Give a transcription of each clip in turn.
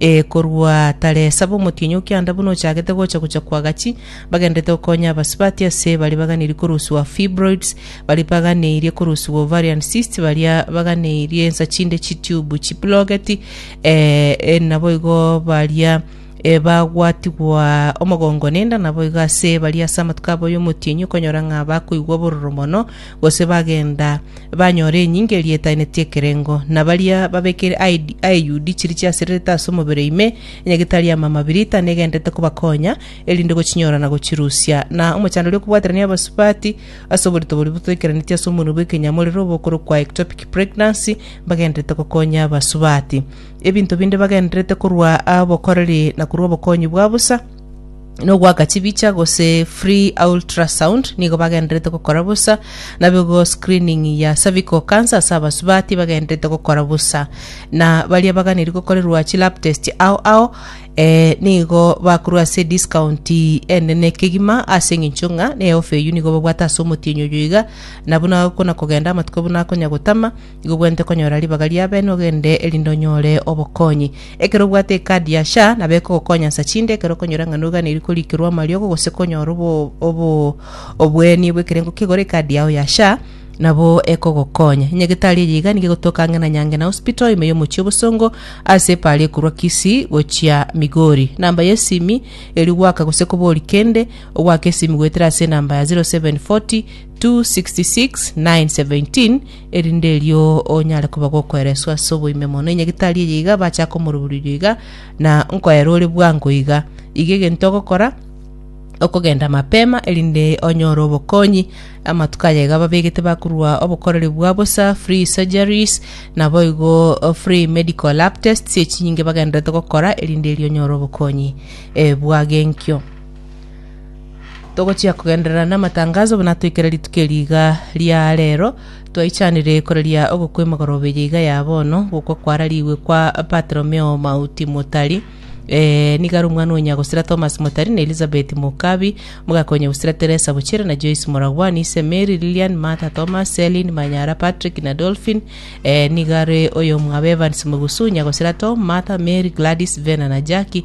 Ee, korwa tare saba omotienyi o kianda buna ochagete gocha gocha kwa gachi, bagenderete gokonya abasubati ase baria baganeirie korusiwa fibroids, baria baganeirie korusiwa ovarian cysts, baria baganeirie ensa chinde chitube chiplogeti, ee, e, naboigo baria e, bagwatigwa omogongo nenda, naboigo ase baria ase amatuko abo y'omotienyi okonyora ng'a bakoigwa obororo mono, gose bagenda banyora enyinga eria etainetie ekerengo, na baria babekire aidi- aeyudi chiria chiasererete ase omobere ime, onye getari y'amama birita negenderete kobakonya, erinde gochinyora na gochirusia. Na omochandori okobwaterania abasubati ase oborito boria botoikeraneti ase omonwe bw'ekenyamo rere obokorokwa ectopic pregnancy, mbagenderete gokonya abasubati. Ebinto binde bagenderete korwa abokoreri na korwa obokonyi bwa bosa, nogoaka chibicha gose free ultrasound nigo bagenderete gokora bosa nabigo screening ya cervical cancer ase abasubati bagenderete gokora bosa na baria baganeri gokorerwa chi lab test ao ao eh, nigo bakorwa ase discount enene kegima ase eng'encho ng'a na eofa eyio nigo babwate ase omotienyi oyo iga nabo nakona kogenda amatuko buna akonya gotama Igo bwente konyora ribaga ri'abene ogende, erinde onyore obokonyi. Ekero obwate ekadi ya SHA, nabo ekogokonya nsa chinde ekero okonyora ng'a noganeiri korikerwa amariogo gose konyora obo- obo- oboeni bw'ekerengo kegora ekadi yao ya SHA, nabo ekogokonya. Enyagetari eye iga nigo egotoka ang'e na Nyangena Hospital ime y'omochie obosongo ase epaari ekorwa Kisii gochia Migori. Namba y'esimi erio goaka gose kobori kende, ogoaka esimi goetera ase enamba ya 0740 266 917 erinde erio onyare koba gokwereswa ase oboime mono. Enyagitari eye iga bacha komorubururia iga, na nkoera ore bwango iga. Iga egento ogokora, okogenda mapema erinde onyore obokonyi. Amatuko aya iga babegete bakorua obokoreri bwa bosa, free surgeries, naboigo o, free medical lab tests echinyinge bagenderete gokora erinde erio onyore obokonyi eh, bwag'enkio. Togochia kogenderera namatangazo buna toikere rituko eri iga ria rero, twaichanire koreria ogokwa emegorobe eye iga ya bono, gokwa kwararigwe kwa Bartolomeo Mauti Motari, eh, nigo are omwana o nyagosira Thomas Motari na Elizabeth Mokabi, omogaka o nyagosira Teresa Bochere na Joyce Moragwani, ise Mary, Lilian, Martha, Thomas, Celine, Manyara, Patrick na Dolphin, eh, nigo are oyomwabo Evans Mogusu, nyagosira Tom, Martha, Mary, Gladys, Vena na Jackie,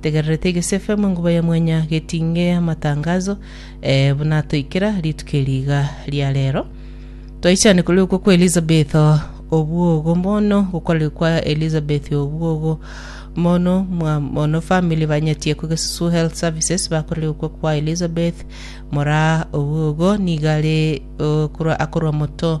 Tegererete egesefe amo enguba ya mwenya getinge amatangazo eh, buna atoikera rituko eri iga ria rero. Twaichane kore okwo kwa Elizabeth o- obwogo mono gokore kwa Elizabeth obwogo mono mwa mono family banyetie ko Gesusu Health Services bakore okwo kwa Elizabeth mora obwogo nigare okorwa akorwa moto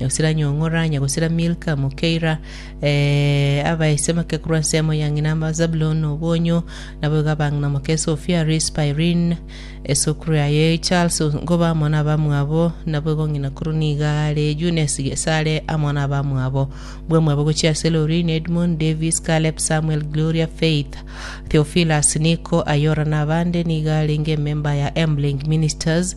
nyagosira Nyong'ora, nyagosira Milka, Mokeira, eh, abaisemake korwa ensemo ya ng'ina Zabuloni na obonyo, naboigo abang'ina moke Sofia, Rispa, Irin, esukuru yaye Charles, ngoba amo nabamwabo, naboigo ng'ina korwa nigo are Eunesi Gesare amo nabamwabo. Bwamwabo gochia ase Lorin, Edmund, Davis, Caleb, Samuel, Gloria, Faith, Theophilus, Nico, Ayora na abande nigo arenge ememba ya Emblink Ministers,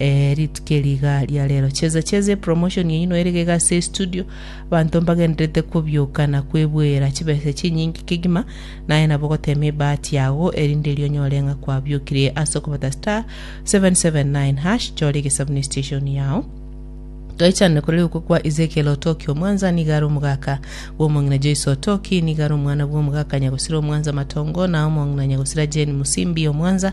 Ee rituko eri iga ria rero cheza cheza epromotion eyio noerege iga ase estudio abanto mbagendererete kobioka na kwebuera chibesa chinyinge kegima naye nabo gotema ebahati yago erinde erio onyore ng'a kwabiokire ase okobata star 779 hash chora egesabuni station yao Toichanire korere okwo kwa Ezekiel Otoki Omwanza niga are omogaka bw'omong'ina Joyce Otoki niga are omwana bw'omogaka Nyagosira Omwanza Matongo na omong'ina Nyagosira Jane Musimbi Omwanza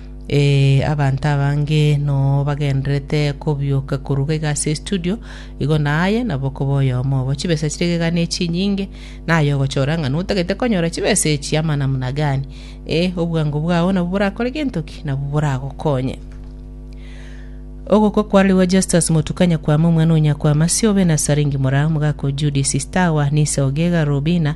Ee, abanto abange nobagendererete kobioka koruga iga ase estudio, igo naye nabo koba oyomo obo. Chibesa chire iga ne chinyinge, naye ogochora ng'a notagete konyora chibesa echi ama namuna gani. Ee, obwango bwao nabwo borakore gento ki? Nabwo boragokonye. Ogokwa kwarerigwe Justus Motuka Nyakwama omwana o Nyakwama Siobe na Saringi Mora, omogaka o Judith Stawa, Nisa Ogega, Robina,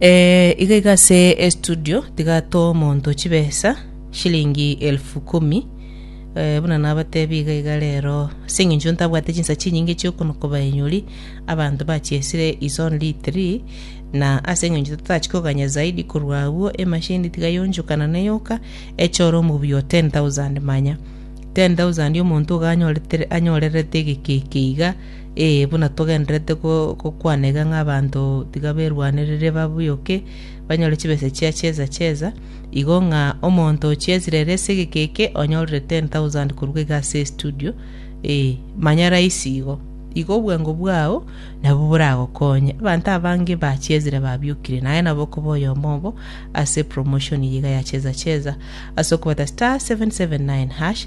Eh, iga iga ase estudio tiga to omonto chibesa shilingi elfu kumi eh, buna nabatebi iga iga rero ase eng'encho ntabwate chinsa chinyinge chiokonoka baenyori abanto bachiesire is only three na ase eng'encho totachi koganya zaidi korwa agwo emashini tiga yonchokana neyoka echore omobuya o 10000 manya 10000 omonto iga anyoretere anyorerete egekeke iga Ee, buna togendererete gokwana iga ng'a abanto tiga berwanerere babuyoke, banyore chibesa chia cheza cheza, igo ng'a omonto ochiesire ere ase egeka eke onyorire 10,000 korwa iga ase estudio, ee, manya raisi igo. Igo obwango bwao nabwo boragokonye. Abanto abange bachiesire babiokire, na aye nabo okoba oyomo obo ase promotion eye iga ya cheza cheza ase okobeta *779#